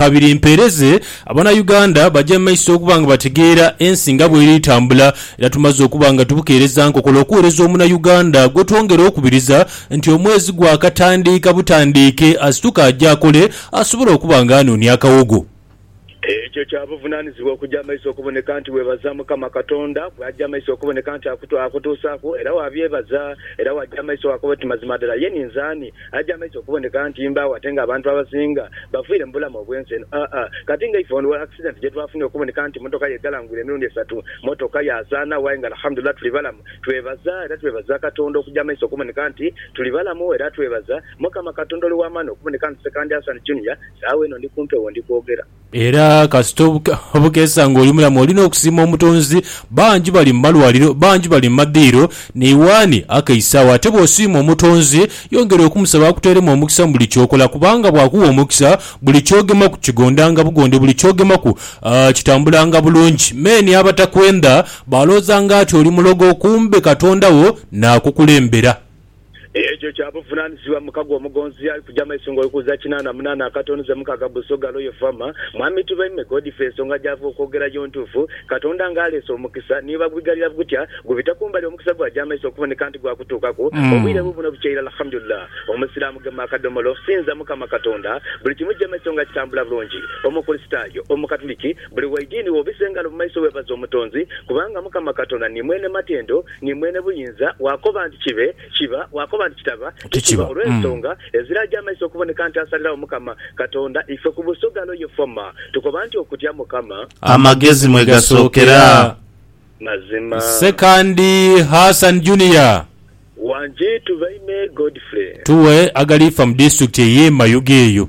Kabiri mpeereze Abanauganda baje mu maiso okuba nga bategeera ensi nga bweri tambula era tumaze okuba nga tubukeereza nkokola okuwereza Omunauganda gwetwongera okubiriza nti omwezi gwakatandiika butandiike asituke aje akole asobole okuba nga anoonia akawogo. Ekyo kya buvunanizibwa okuja maiso okuboneka nti webaza Mukama Katonda bwaja maiso okuboneka nti akutuusaku era wabyebaza era waja maiso wakoba oti mazima dala ye ninze ani? Aye kyamazima okuboneka nti mbaagho ate nga abantu abasinga bafiire mu bulamu obw'ensi eno. Aa kati nga ife olwa akisidenti gye twafunye okuboneka nti mmotoka ye eghalangwire emirundi esatu, mmotoka yaasaanagho aye nga Alhamudulillah tuli balamu, twebaza era twebaza Katonda okugya mu maiso okuboneka nti tuli balamu era twebaza Mukama Katonda Oli w'Amaani okuboneka nti Ssekandi Hassan Junior saagho eno ndi ku mpewo ndi kwogera. Era kasita obukeesa nga oli mulamu olina okusiima Omutonzi. Bangi bali mu malwaliro, bangi bali mu madhiiro ni waani akeisa agho. Ate bw'osiima Omutonzi, yongera okumusaba akuteeremu omukisa mu buli ky'okola kubanga bw'akuwa omukisa, buli ky'ogemaku kigondanga bugonde, buli ky'ogemaku kitambulanga bulungi. Many abatakwendha baalooza ng'ati oli mulogo kumbe Katonda wo naakukulembera. Ekyo kya buvunanizibwa mukago omugonzi yali kuja maiso nga oli kuza kinana munana akatono ze mukaga Busoga Royal Farmer. Mwami Tubaime Godfrey ensonga gyava okwogera yo ntuufu. Katonda nga aleese omukisa ni iba gubighalira gutya gubita kumbali omukisa gwaja maiso okuboneka nti gwakutuukaku obwire bubuno bukya irala Alhamdulillah Omusiramu gema akadomolo okusinza Mukama Katonda buli kimu kija maiso nga kitambula bulungi Omukurisitayo, Omukatuliki buli waidiini wobisa engalo mumaiso webaze Omutonzi kubanga Mukama Katonda ni mwene matendo Ni mwene buyinza, bw'akoba nti kibe, kiba, bw'akoba nti kitaba, tikiba, olw'ensonga eziraja amaiso okuboneka nti asalirawo Mukama Katonda. Ife ku busogalo ye Foma, tukoba nti okutya Mukama. Amagezi mwe gasookera. Mazima. Sekandi Hassan Junior. Wangi Tubaime Godfrey. Tuwe agalifa mu disitulikiti ey'e Mayuge eyo.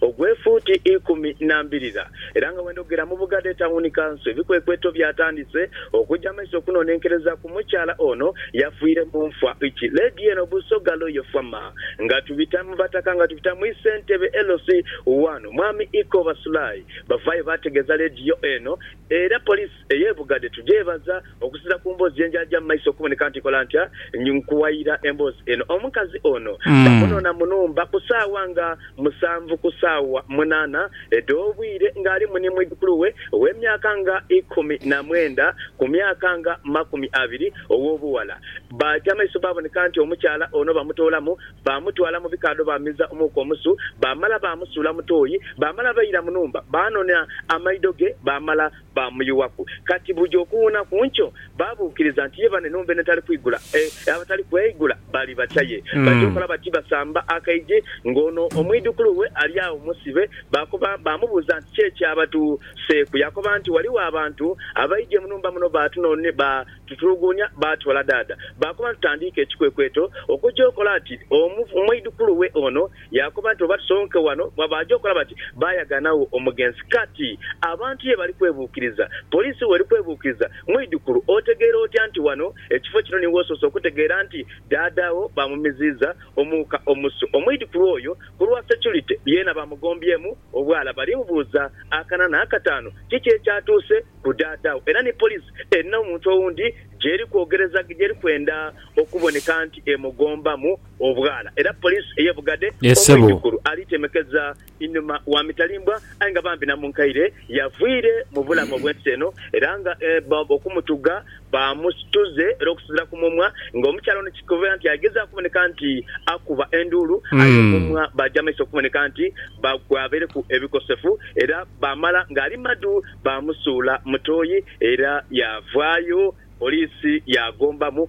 ogw'efuuti ikumi na mbirira era nga wenda okugera mu Bugadha Etawuni Kanso ebikwekweto byatandise okuja maiso okunonenkereza ku mukyala ono yafiire mu nfa ki. Leediyo eno Busoga Loyo Fama nga tubita mu bataka nga tubita mu Isentebe LC1 Mwami Iko Basulayi bavaayo baategeeza leediyo eno era Poliisi ey'ebughade tugyebaza okusinzira ku mboozi yenjaja mumaiso okuboneka nti nkola ntya nkuwaira emboozi eno. Omukazi ono bamunona munumba ku saawa nga musanvu ku saawa munana edh'obwire nga alimu ni mwidhukuluwe ow'emyaka nga ikumi na mwenda ku myaka nga makumi abiri ow'obughala. Baja maiso baboneka nti omukyala ono bamutoolamu bamutwala mu bikaadho bamiza omuuka omusu bamala bamusuula mu tooyi bamala baira munumba banona amaidho ge bamala baamuyughaku. Kati buja okuwuuna ku nkyo, baabuukiriza nti ye bane n'ombeene tali kwigula. E, abatali kweigula bali bacha ye. Baja okola bati, basamba akaije, ng'ono omwidhukulu we ali agho musibe. Baakoba, baamubuuza nti, Ki ekyabatu seeku? Yaakoba nti, Ghaligho abantu abaidhie mu nhumba muno baatunonie, ba tutuluguunia, baatwala dhaadha. Baakoba nti, Tutandiike ekikwekweto okuja okola ati omwidhukulu we ono Yaakoba nti, Oba tusonke wano mu abaagya okulaba ki? Baayagaanagho omugenzi. Kati, abantu ye bali kwebuukiriza. Poliisi w'eri kwebuukiriza, Mwidhukulu, otegeera otya nti wano, ekifo kino, ni w'osoose okutegeera nti Dhaadha wo baamumiziiza omuuka omusu? Omwidhukulu oyo, ku lwa securite, yeena baamugombyemu obwala. Bali bubuuza akana n'akataanu, Kiki ekyatuuse ku Dhaadha wo? Era ni poliisi erina omuntu owundi gy'eri kwogereza, gy'eri kwenda okuboneka nti emugombamu. obwala era poliisi ey'e Bugadhe omwidhukulu ali temekeza inhuma wa mitalimbwa aye nga bambi Namunkaire yavwire mu bulamu obw'ensi eno era nga okumutugha baamusituze era okusinzira ku mumwa nga omukyala ono kikobeera nti agezaaku okuboneka nti akuba enduulu aye omumwa baagya maiso okuboneka nti gwabaireku ebikosefu era baamala ng'ali madu baamusuula mu toyi era yaavaayo poliisi yaagombamu